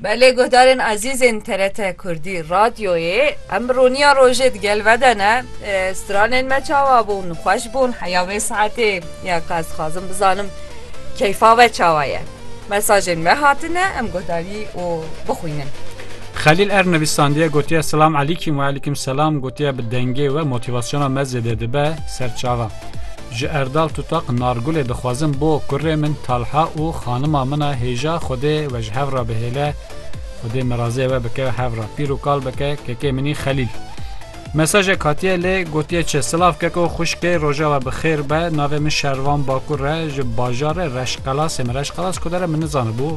Belê guhdarên ezîzên TRT Kurdî Radyoyê em roniya rojê di gel ve de ne stranên me çawa bûn xweş bûn heya vê saetê ya ka ez dixwazim bizanim keyfa ve çawa ye mesajên me hatine em guhdarî û bixwînin. Xelîl Er nivîsandiye gotiye Silam Elîkîm we Elîkîm Selam gotiye bi dengê we motivasyona me zêde dibe ser çavan. Ji Erdal Tutaq Nargulê dixwazim bo kurê min Talha û xanima min a hêja Xwedê we ji hev re bihêle, Xwedê mirazê we bike hev re pîr û kal bike kekê min î Xelîl. Mesajek hatiye lê gotiye çi? Silav keko xwişkê rojava bi xêr be navê min Şervan Bakur e ji bajarê Reşqelasê min Reşqelas kudere min nizanibû.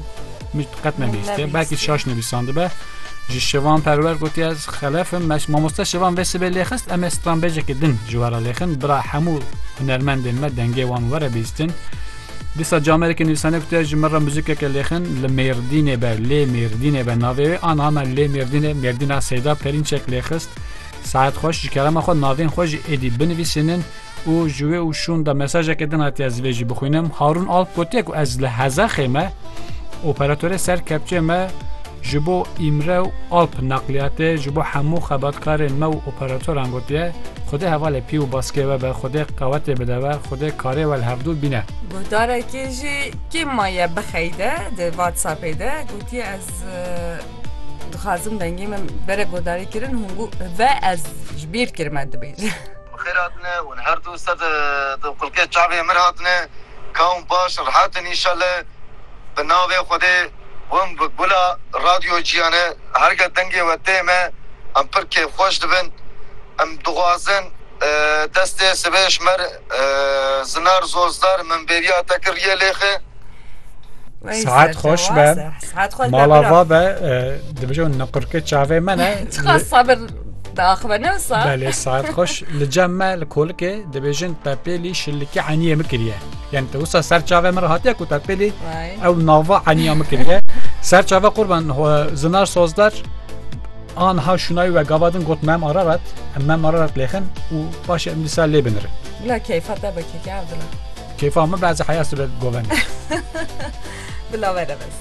Min qet nebîste. Belkî şaş nivîsandibe. Ji şivan perwer gotiye ez xelefim meş mamoste şivan vê sibê lêxist em ê stranbêjekê din ji wera lêxin bira hemû hunermendên me dengê wan were bîstin. Dîsa camerekê nivîsane gotiye ji min re muzîkeke lêxin li mêrdînê be lê mêrdînê be navê wê an hame lê mêrdînê mêrdîna seyda perînçek lêxist. Saet xweş ji kerema xwe navên xwe ji êdî binivîsînin û ji wê û şûn de mesajeke din hatiye ez vê jî bixwînim Harûn Alp gotiye ku ez li Hezexê me operatorê ser kepçê me ji bo îmre û alp neqliyatê ji bo hemû xebatkarên me û operatoran gotiye Xwedê hevalê pî û baskê we be Xwedê qewetê bide we Xwedê karê we li hevdû bîne. Guhdarekê jî kê maye bixeyde di whatsappê de gotiye ez dixwazim dengê min bere guhdarî kirin hûn got ve ez ji bîr kirime dibêje. Bi xêr hatine hûn her du sed di xulkê çavê mir hatine ka hûn baş rehat in înşale bi navê xwedê hûn bi gula radyo ciyane herga dengê we tê me em pir kêfxweş dibin em dixwazin destê sibê ji mer zinar zozdar min bêriya te kir riyê lêxi. Sihet xweş be mala va be dibijin niqurkê çavê me ne. Di axive ne wisa? Belê saet xweş li cem me li kolikê dibêjin tepêlî şilikî eniyê min kiriye. Yani te wisa ser çavê min re hatiye ku tepêlî ew nava eniya min kiriye. Ser çavê qurban zinar sozder an ha şunayî we gavadin got mem ararat em mem ararat lêxin û paşê em dîsa lê binir. Bila keyfa te be keke evdila. Keyfa min bazı heyası be govene. Bila verebes.